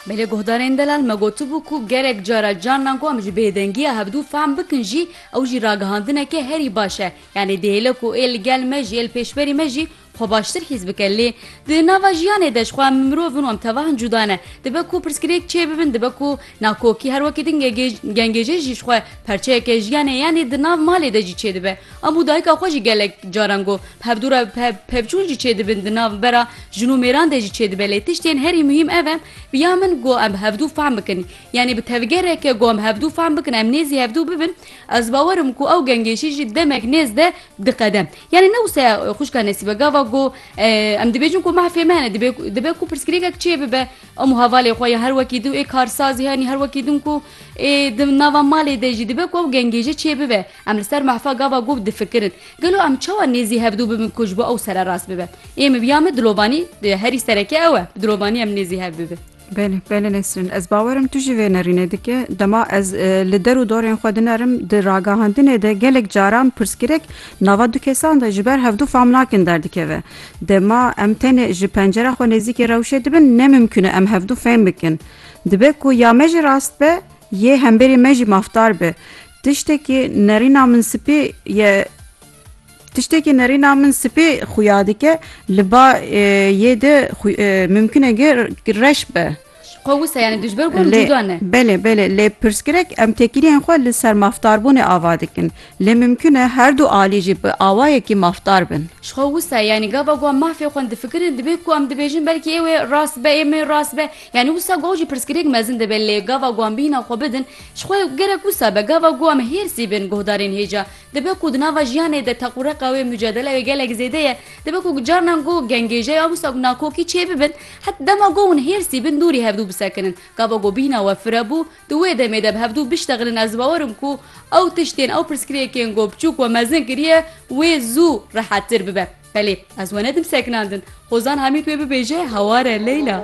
Belê guhdarên delal me gotibû ku gerek cara carna ku em ji bêdengiya hevdu fehm bikin jî ew jî ragihandineke herî baş e. Yanî dihêle ku ê li gel me jî ê li pêşberî me jî xwe baştir hîs bike. Lê di nava jiyanê de jixwe em mirov in û em tevahin cuda ne. Dibe ku pirsgirêk çêbibin dibe ku Nakokî her wekî din gengêje jî ji xwe perçeyeke jiyanê yanê di nav malê de jî çêdibe. Em û dayika xwe jî gelek caran got. Bi hevdû re pevçûn jî çêdibin di nav bera jin û mêran de jî çêdibe lê tiştên herî muhîm ev e bi ya min got em bi hevdû fehm bikin yanê bi tevgereke got em hevdû fehm bikin em nêzî hevdû bibin ez bawer im ku ew gengêjî jî demek nêz de diqede. Yanê ne wisa ye xwişka Nesîbe gava got em dibêjin ku mahfê me hene dibe ku pirsgirêkek çêbibe Em û hevalê xwe ya her wekî din ê karsazî yanî her wekî din ku ê di nava malê de jî dibe ku ew gengêje çêbibe. Em li ser mehfa gava gov difikirin. Gelo em çawa nêzî hevdû bibin ku ji bo ew sererast bibe? Ê min ya min dilovanî herî sereke ew e. Bi dilovanî em nêzî hev bibin. Belê, belê Nesrîn. Ez bawer im tu jî vê nerînê dike. Dema ez li der û dorên xwe dinerim di ragihandinê de gelek caran pirsgirêk nava du kesan de ji ber hevdû fam nakin derdikeve. Dema em tenê ji pencera xwe nêzîkê rewşê dibin ne mimkun e em hevdu fêm bikin. Dibe ku ya me jî rast be yê hemberê me jî mafdar be. Tiştekî nerîna min spî ye Tiştekî nerîna min spî xuya dike li ba yê de mimkun e reş be. Xwe wisa yanî dijber got Lê cuda ne. belê belê lê pirsgirek em têkiliyên xwe li ser maftarbûnê ava dikin. Lê mimkun e her du alî jî bi awayekî mafdar bin. Ji xwe wisa yanî gava ku em mafê xwe difikirin dibe ku em dibêjin belkî ê wê rast be ê min rast be. Yanî wisa goh jî pirsgirêk mezin dibe lê gava ku em bîna xwe bidin ji xwe gerek wisa be gava ku em hêrsî bin guhdarên hêja Dibe ku di nava jiyanê de teqûreqa wê mucadele wê gelek zêde ye. Dibe ku carinan ku gengêje ya wisa ku nakokî çê bibin, het dema ku hûn hêrsî bin dûrî hevdû bisekinin. Gava ku bîhna we firebû, di wê demê de bi hevdû biştexinin ez bawer im ku ew tiştên ew pirsgirêkên ku biçûk we mezin kiriye wê zû rehettir bibe. Belê, ez we nedim sekinandin. Hozan Hamît wê bibêje hawar e Leyla.